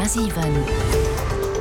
100,7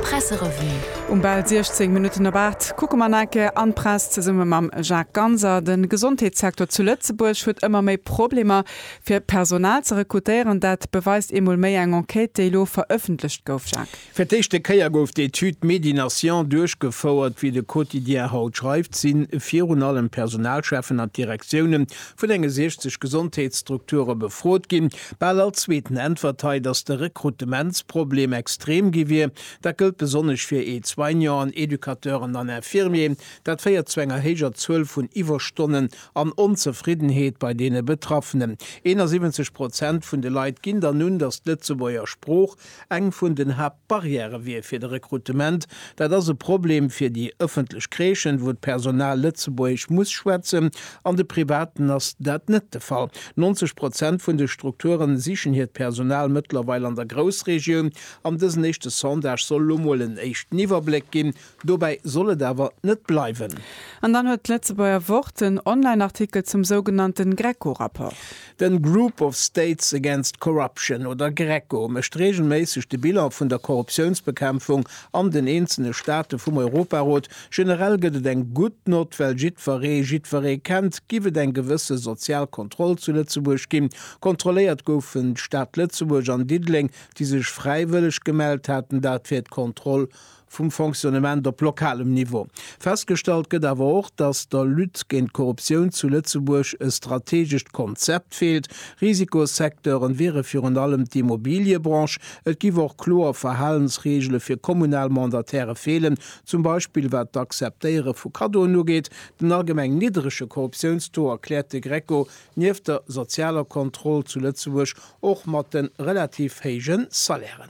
Presserevue. Um bal 16 Minutten op 8 kucke mer nach eng Kéier an d'Press zesumme mam Jacques Ganser. De Gesondheetssecteur zu Lëtzebuerg huet ëmmer méi Problemer, fir Personal ze rekrutéieren. Dat beweist eemol méi eng Enquête, déi elo verëffentlecht gouf, Jacques. Fir d'éischte Kéier gouf d'Etüd Medi-Nation duerchgefouert. Wéi de Quotidien haut schreift, si virun allem d'Personalcheffen an d'Direktioune vun enge 60 Gesondheetsstrukture befrot ginn. Bal all Zweeten äntwert hei, datt de Rekrutementsproblem extrem gi wier. Dat gëllt besonnesch fir Aide-soignanten, Educateuren an Infirmieren. Dat féiert zu enger héijer Zuel vun Iwwerstonnen an Onzefriddenheet bei deene Betraffenen. 71 Prozent vun de Leit ginn dann un, datt d'Lëtzebuerger Sprooch Eng vun den Haaptbarrièrë wier fir de Rekrutement. Dat ass e Problem fir déi ëffentlech Crèchen, wou d'Personal Lëtzebuergesch muss schwätzen. An de Privaten ass dat net de Fall. 90 Prozent vun de Strukture sichen hiert Personal mëttlerweil an der Groussregioun. An dësen éischte Sondage soll elo mol en éischten Iwwerbléck ginn, Dobäi soll et awer net bleiwen. An dann huet d'Lëtzebuerger Wort en Online-Artikel zum sougenannten GRECO-Rapport. Den Group of States Against Corruption, oder GRECO, mécht reegelméisseg de Bilan vun der Korruptiounsbekämpfung an den eenzele Staate vum Europarot. Generell gëtt et eng gutt Nott, well jiddweree jiddweree kennt. Giff et eng gewësse sozial Kontroll zu Lëtzebuerg ginn? Kontrolléiert goufen d'Stad Lëtzebuerg an Diddeleng, déi sech fräiwëlleg gemellt haten. Dat fir d'Kontroll vum Fonctionnement op lokalem Niveau. Festgestallt gëtt awer och, datt der Lutte géint d'Korruptioun zu Lëtzebuerg e strategescht Konzept feelt. Risikosecteuren wiere virun allem d'Immobiliëbranche. Et giff och kloer Verhalensreegele fir kommunal Mandataire feelen, zum Beispill wat d'Akzeptéiere vu Kaddoen ugeet. Den allgemeng niddrege Korruptiounstaux erkläert de Greco Nieft der sozialer Kontroll zu Lëtzebuerg och mat de relativ héije Salairen.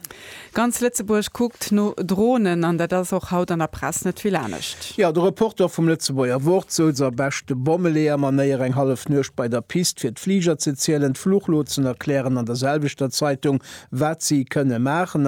Ganz Lëtzebuerg kuckt no Dronen an dat ass och haut an der Press net vill anescht. Jo, de Reporter vum Lëtzebuerger Wort souz a beschte Bommeleeër-Manéier eng hallef Nuecht bei der Pist fir d'Fliger ze zielen, d'Fluchlotsen erklären an der selwechter Zeitung, wat si kënne maachen.